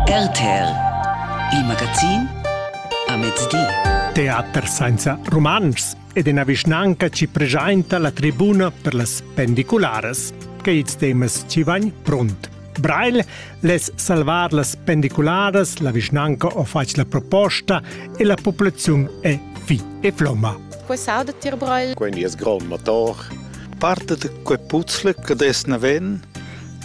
RTL Il magazin a mezdi. Teater senza rumantschs ed ina vischnanca ci presenta la tribuna per las pendicularas. Che ils temas ci van pront. Brail les salvar las pendicularas, la vischnanca o faci la proposta e la popolazione è fi e flomma. Qua sauda tir Brail. Quindi es grond motor. Parte de quei puzzle che des ne ven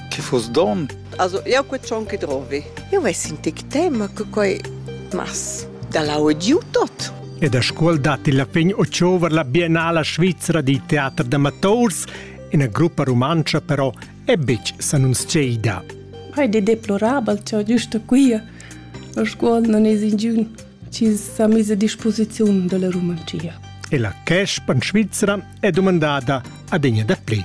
Che fuss don? Also, jau quei tschon che drovi. Io ves in tic tema che quei mas da la audiu tot. E da scuol datti la fin ociover la Biennala Svizzera di teater d'amators, ina gruppa rumantscha però è betg s'annunzieida. Hai de deplorabel, ciò giusto quia. La scuol non es ingiun ci sa mise a disposizione della Rumancia. E la Cash pan Svizzera è domandata ad egna da pli.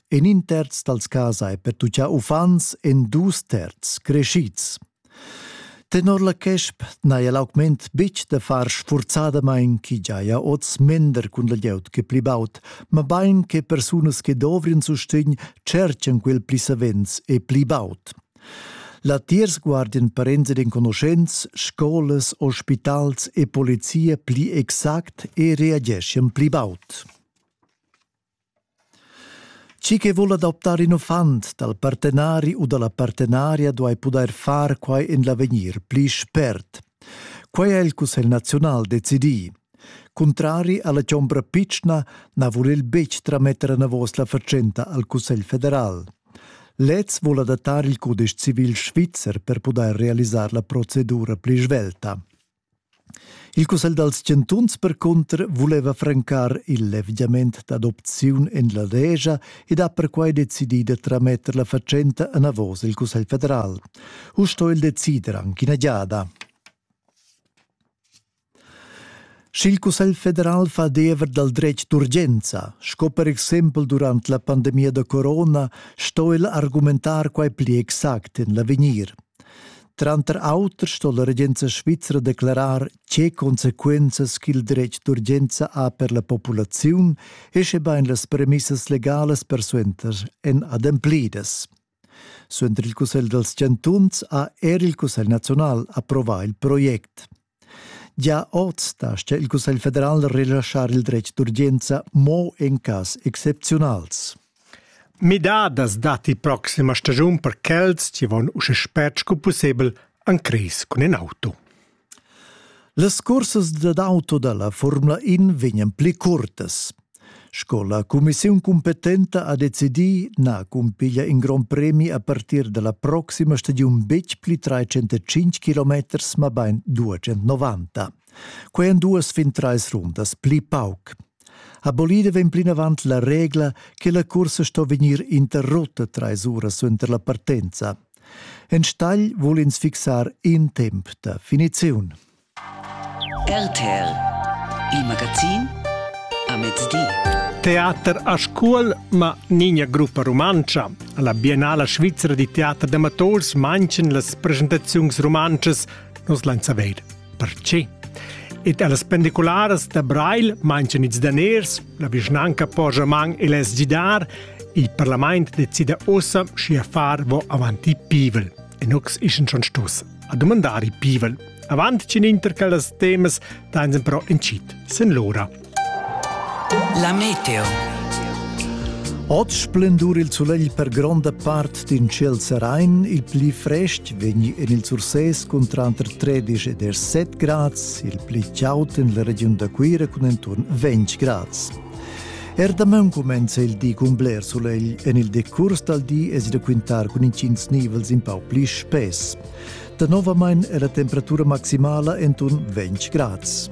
En in terz dals cas hai pertuchà uffants en dus terzs creschids. Tenor la CESP n'haja l'augment betg da far sfurzadamain ch'i giaja oz mender cun la glieud che pli baud, mabain che persunas che dovrien sustegn cerchan quel pli savens e pli baud. Latiers guardian parents ed enconuschents, scolas, ospitals e polizia pli exact e reageschian pli baud. Chi che voul adoptar ün uffant dal partenari u da la partenaria duai pudair far quai en l'avegnir pli spert. Quai ha il Cussegl naziunal decidì. Cuntrari a la chombra pitschna na vul el betg trametter enavos la fatschenta al Cussegl federal. Lez vul adattar il cudesch civil svizzer per pudair realisar la procedura pli svelta. Il cussegl dals chantuns percunter vuleva francar il levgiament d'adopziun en la Legia ed ha perquai decidì da trametter la fatschenta enavos il Cussegl federal. Uss sto el decider anche ina giada. Sch'il Cussegl federal fa diever dal dretg d'urgenza, sco per exempel durant la pandemia da corona, sto el argumentar quai pli exact en l'avegnir. Tranter auter sto la regenza svizra declarar tge consequenzas ch'il dretg d'urgenza ha per la populaziun e schebain las premissas legalas persuenter èn ademplidas. Suenter il Cussegl dals chantuns ha er il Cussegl naziunal approvà il project. Gia oz dastga il Cussegl federal relaschar il dretg d'urgenza mo en cas excepziunals. Midadas datti proxima stagiun per quels che van uschè spert sco pussebel en cris cun in auto. Las cursas dad auto da la Formula 1 vegnan pli curtas. Sco la cumissiun cumpetenta ha decidì na cumpiglia in grond premi a partir da la proxima stagiun betg pli 305 km, mabain 290. Quai èn duas fin trais rundas pli pauc. Abolida vegn plinavant la regla che la cursa sto vegnir interrutta trais uras suenter la partenza. Enstagl vul ins fixar in temp da finiziun. RTL Il magazin a mezdi. Teater a Scuol, ma nigna gruppa rumantscha. Alla Biennala Svizzera di teater d'amatours manchen las presentaziuns rumantschas nos lain saveir perché. Ed allas pendicularas da Breil manchen ils daners, la vischnanca Porjaman e les Gidar, il parlament decida ossa schi a far vo avanti pivel. E nox ischen schon stos a domandare pivel. Avant cin inter quellas temas dain però incit sin l'ora. La meteo. Oz splendur il sulegl per gronda part d'in ciel serain, il pli frest vegni en il Sursès cun tranter 13 ed 7 grads, il pli chaud en la regiun da Cuira cun enturn 20 grads. Er damaun cumenza il di cun bler sulegl, en il decurs dal di es da quintar cun intgins nivels in pau pli spess. Danovamain è la temperatura maximala entun 20 grads.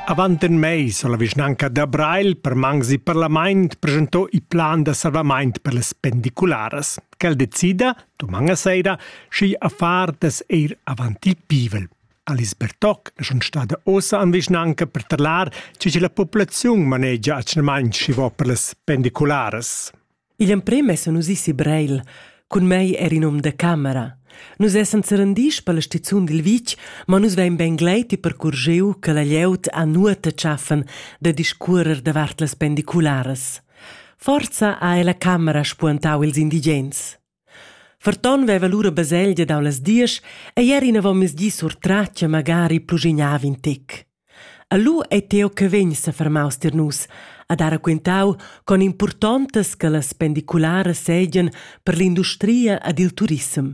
Avant in mais ha la vischnanca da Breil per mangs e parlament presentò il plan da salvament per las pendicularas. Quel decida, domani sera, schi affar das eir avant il pivel. Alice Bertoc è schon stada ossa an vischnanca per tarlar, ce che la populazione manegia atschnamaint schivo per las pendicularas. Igl emprem essan nus isi Breil. Cun mei era in um da camera. Nus essan serendis per la stizun dil vitg, ma nus vein bein gleiti percurgiu che la glieud ha nuota tschaffen da discuorer davart las pendicularas. Forza ha ella camera spuentau ils indigens. Ferton veva lura baselgia dau las diesch ei era inavon mezdi surtratg e magari pluschignav in tic. E lu ei Teo che vegn sefermaus tier nus a dar raquintau con impurtontas che las pendicularas seigien per l'industria ed il turissem.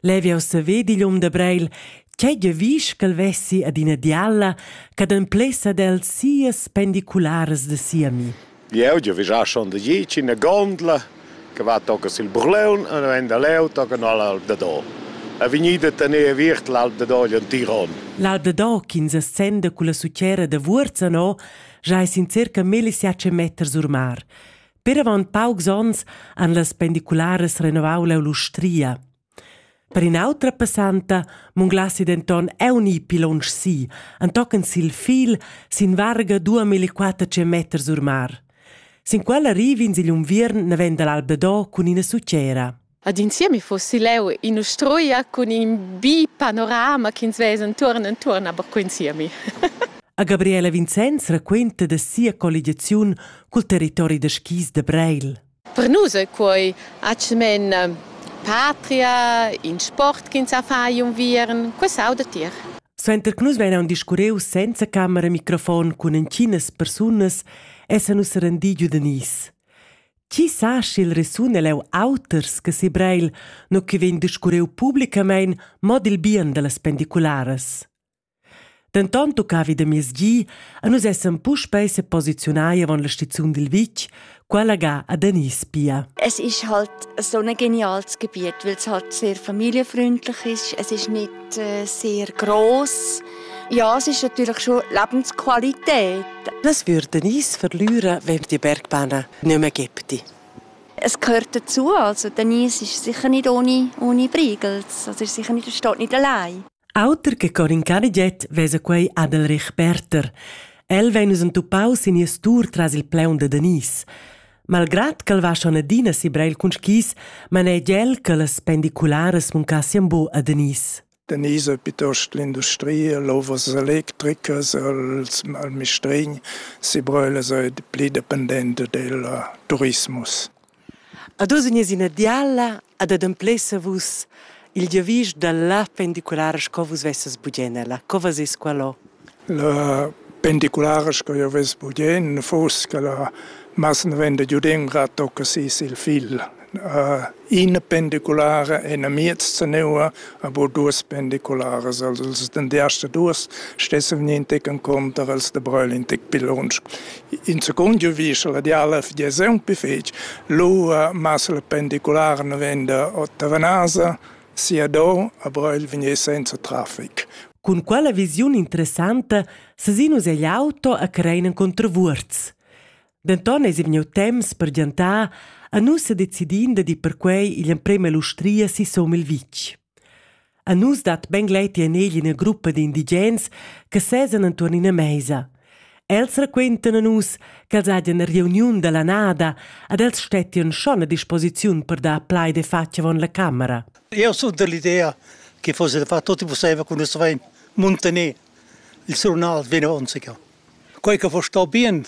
Levi jau saver digl um da Breil, tgei giavisch ch'el vessi ad ina dialla che ademplessa d'el sias pendicularas da sia mi. Jeu giavischà schon da dieci ina gondla che va tocca sil Burleun e vegn da leu tocca no all'Alp da Do. È vegnida a tenere aviert l'Alp da Do en Tiron. L'Alp da Do, ch'ins ascenda con la sucera da Vurzano, giai sin circa 1500 meters or mar. Per avant paucs onns han las pendicularas renovau l'Eulustria. Per in'autra passanta munglassi denton euni pilonsch si, antochen sil fil sin varga 2400 meter sur mar. Sin quella rivin sigl unviern naven dall'Alba Do cun ina sucera. Ad in siemi fossi leu in'ustruia cun in bi panorama ch'ins vesa entuorn entuorn, aber co in siemi. A Gabriela Vincenz raquenta da sia colligiaziun cul territori da skis da Breil. Per nus è quei atgnamen patria, in sport ch'ins ha fai unviern, quei sauda tier. Suenter che nus vegnan discurreus senza camera microfon cun entginas persunas essan nus serendi giu da Nice. Chi sa sch'il resun è leu auters che si Breil, no che vegn discurreu publicamein mo dil bien dallas pendicularas. Denton tuccavi da miezgi a nus essan puspei seposiziunai avon la stiziun dil vitg, quella ga a Denis Pia. Es ist halt so ein geniales Gebiet, weil es halt sehr familienfreundlich ist. Es ist nicht äh, sehr groß. Ja, es ist natürlich schon Lebensqualität. Was würden uns verlieren, wenn wir die Bergbahnen nicht mehr gibt? Es gehört dazu. Also Denise ist sicher nicht ohne, ohne Brigels. Also ist sicher nicht, steht nicht allein. Auter che con in caniget vesa quei Adelrich Berter. El vegn us entupaus in ies tour tras il pleun de Denise. Malgrat ch'el va schon adina si breil cun skis, manegia el che las pendicularas muncassien bu a Denise. Denise pietost l'industria, l'ovas electricas, els, al mistrgn, si brölas ei pli dependenta del turismus. Ad oz in ina diala ad ademplessa vus il giavisch dalla pendiculara sco vus vesses bugen ella. Co vas es qualo? La pendiculara sco jeu vess bugen fuss che la masnavenda giudendra tocca sis il figl. Ina pendiculara è ina miez zaneua, aber duas pendicularas. Also els den die erste duas stessen vegni in tec encunter els da Breil in tec pil lunsch. In secunda visa la diala figlia aunc pli fetg, lu masla pendiculara navenda ò Tavanasa, Siador a Breil vegnir senza traffic. Cun quella visiun interessanta sesin nus egl auto a crein en contravuorz. Denton eis vegniu temps per giantar a nus se decidin da di perquei igl emprem ell'ustria si Somil Vitg. A nus dat ben gleiti en egl ina gruppa di indigens che sesan entuorn ina meisa. Els raquentan a nus ch'els hajan ina reuniun dalla nada ed els stettian schon a disposiziun per dar plaid e fatg avon la camera. Eu sun dell'idea che fosse da far tutto possibile con nus vein mantener il tribunal vino onzica. Quei che vo sto bien,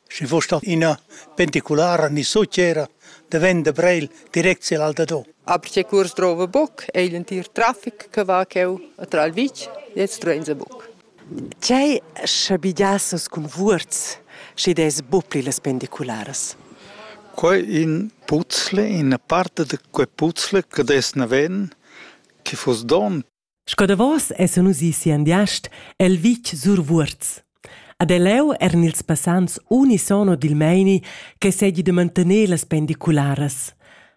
schi vo sto ina penticulara ni succera de vende Breil direct sil Aldado. Aber se kurs drove boek, eilen tier traffic che va cheu a Tralvich, jetzt drehen sie boek. Tgei schabegias nus cun vuorz, schi dess buc pli las pendicularas? Quei in puzzle, ina part da quei puzzle che dess naven, che fuss donn. Sco davos essan nus ì si Andiast el vitg sur Vuorz. Ad el leu eran ils passants unisono dil meini che segi da mantener las pendicularas.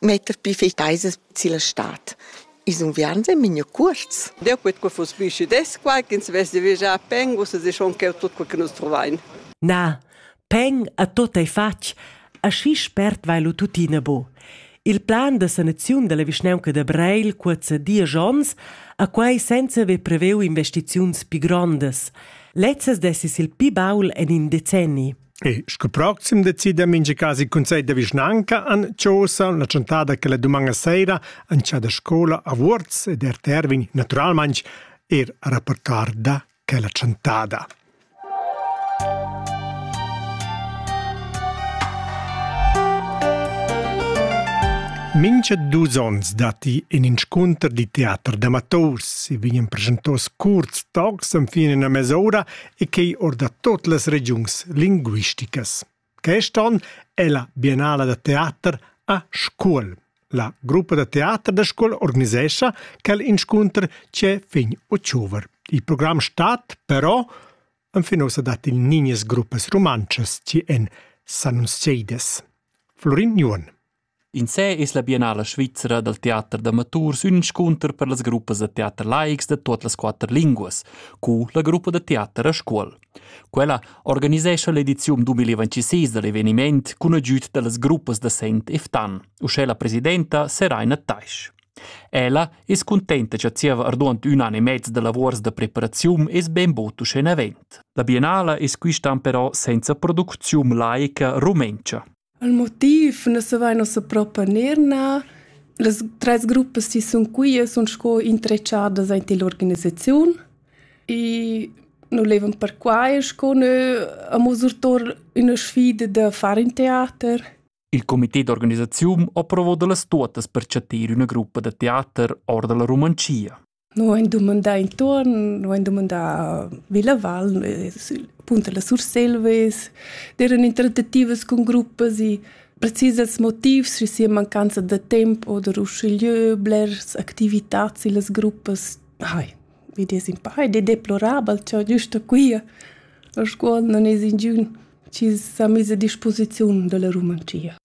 metter pli fei teisas silla stad. Ils unviarns ein migno cuorts. Deu quet co fuss pli schides quai ch'ins vess de viagiar peng ussa se schon cheu tut quel che nus trovain. Na, peng a tot ei fatg, aschi spert vai lu tuttina bu. Il plan da sanaziun dalla vischnaunca da Breil cuorza diesch onns, a quai senza haver preveu investiziuns pli grondas. Lezzas dessis il pi baul en in decenni. E sco proxim decida mincha cas il cunsegl da vischnanca an Chosa la chantada che la dumanna seira an cha da scola a Vuorz ed er Tervin naturalmaing er a rapportar da quella chantada. Mincha dus ons datti in inscunter di teater d'amators. I vegnan presentos curts tocs fin in una mes'ora e quei or da tot las regiuns linguisticas. Quest'on è la Biennala da teater a Scuol. La gruppa da teater da Scuol organisescha quel inscunter c'è fin october. Il programm stat però Anfinosa dat il niñes gruppas romances ci en San Seides. Florin Nuon. Insè es la Biennala svizra dal teater d'amaturs ün inscunter per las gruppas da teater laics da tuot las quatter linguas, cu la gruppa da teater a Scuol. Quella organisescha l'ediziun 2026 da l'evenimaint cun agüd da las gruppas da Sent e Ftan. Uschè la presidenta Seraina Taisch. Ella es cuntenta cha zieva arduond ün an e mez da lavuors da preparaziun es ben bod uschè in avent. La Biennala es quist'an però senza producziun laica rumentscha. Il motiv na savaina ussa propa neir na. Las trais gruppas chi sun quia sun sco intrechadas aint ill'organisaziun e nu laivan perquai sco nö amo surtour üna sfida da far ün teater. Il comité d'organisaziun ho provo da las tuottas per chattir üna gruppa da teater or da la Rumanschia. Nu hain dumandà intuorn, nu hain dumandà Villa Val, punto la Surselva es, d'eiran interdativas cun gruppas e precisas motivs, schi sia mancanza da temp oder uschigliö blers activitats illas gruppas, hai, vid es ün pa ed è deplorabel cha güsta quia a Scuol non es ingün chi s'ha miss a disposiziun da la Rumantschia.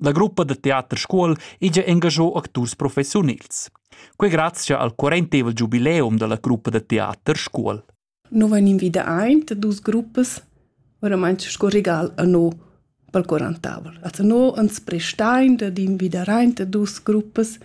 La gruppa da teater Scuol ija engagiò acturs professiunils. Quei grazia al quarentevel giubileum dalla gruppa da teater Scuol. Noi van invida aint dus gruppas, oramai sco regal a noi pel quarantavel. Also noi ans prestain da invidar aint dus gruppas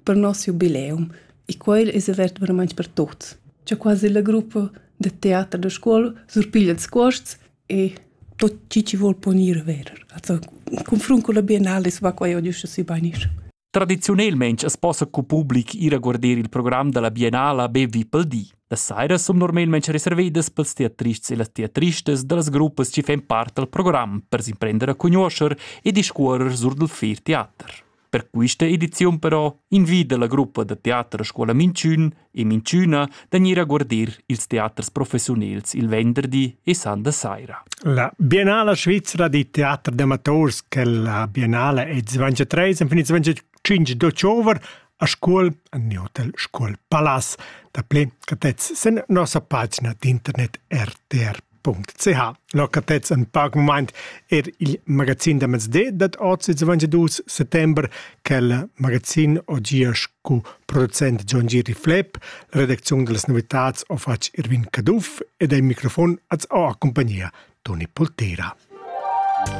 per nos jubileum e quel es avert veramente per tuts. C'è quasi la gruppa de teater da scuola surpiglia ils cuosts e tot chi chi vol ponir ver. Also, confrun cun la biennale es va quai adiüscha sü bainisch. Tradiziunelmaing as possa cu public ir a guarder il program da la Biennala be vi pel di. Las sairas sun normalmaing reservedas pels teatrists e las teatristas da las gruppas chi fan part dal program per s'imprender a cugnuoscher e discuorrer sur dal fer teater. Per questa ediziun però invida la gruppa da teater a scuola Minchün e Minchüna da gnir a guardir ils teaters professiunels il venderdi e san da saira. La Biennala svizra di teater d'amators che la Biennala è 23 en 25 d'october a scuol an di hotel Scuol Palas. Da pli catez sen nossa pagina d'internet rtr.ch. .ch. Locatets ein pac mumaint er il magazin da mezdi dad oz ils 22 settember quel magazin o gia scu producent John Giri Flepp, la redacziun dallas novitats ho fatg Irvin Caduff ed al microfon az ho a compagnia Toni Poltera.